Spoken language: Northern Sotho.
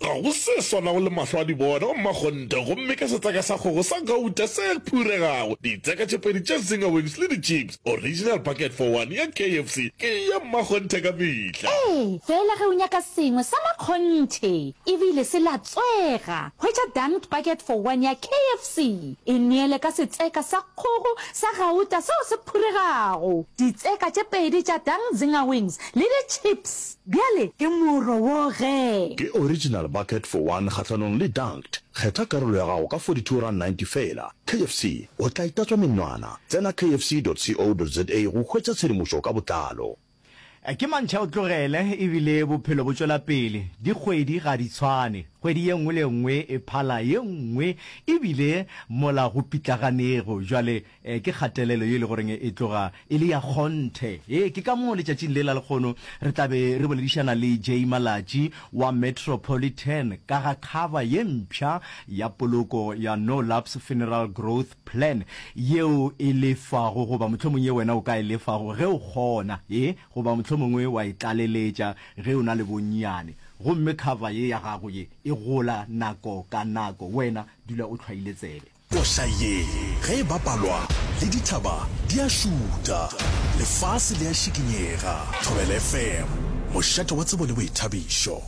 Ga go se swanago le mahlo a dibona o mmakgonte gomme ka setseka sa kgogo sa gauta se phuregago, ditseka tše pedi tša zinger wings le dichips, original bucket for one ya KFC ke ya mmakgonthe ka mehla. Ee, fela ge o nyaka sengwe sa makgonthe e bile se latswega, hwetša dunked bucket for one ya KFC. E neele ka setseka sa kgogo sa gauta seo se phuregago, ditseka tše pedi tša dunked zinger wings le dichips. Bjale ke morro wo gee. Ke original bucket for one kgahlanong le dunked. Kgetha karolo ya gago ka 42 rand 90 feela. KFC, o tla itatswa menwana. Tsena kfc dot co dot za go hwetša tshedimošo ka botlalo. Ke mantšha o tlogele ebile bophelo bo tšwela pele. Dikgwedi ga di tshwane. Kgwedi ye nngwe le ye nngwe e phala ye nngwe ebile mola go pitlaganego. Bjale. Ee, ke kgatelelo ye e le goreng e tloga e le ya kgonthe. Ee, ke ka moo letšatšing le la lekgono re tla be re boledišana le Jay Malatji wa Metropolitan ka ga kgaba ye mpsha ya poloko ya No Lapse Funeral Growth Plan yeo e lefago goba mohlomong ye wena o ka e lefago ge o kgona. Ee, goba mohlomongwe wa e tlaleletša ge o na le bonnyane. Gomme kgaba ye ya gago ye e gola nako ka nako. Wena dula o hlwaile tsebe. Koša ye ge e bapalwa le dithaba di a šuta, lefase le a šikinyega. Thobela FM, mošate wa tsebo le boithabišo.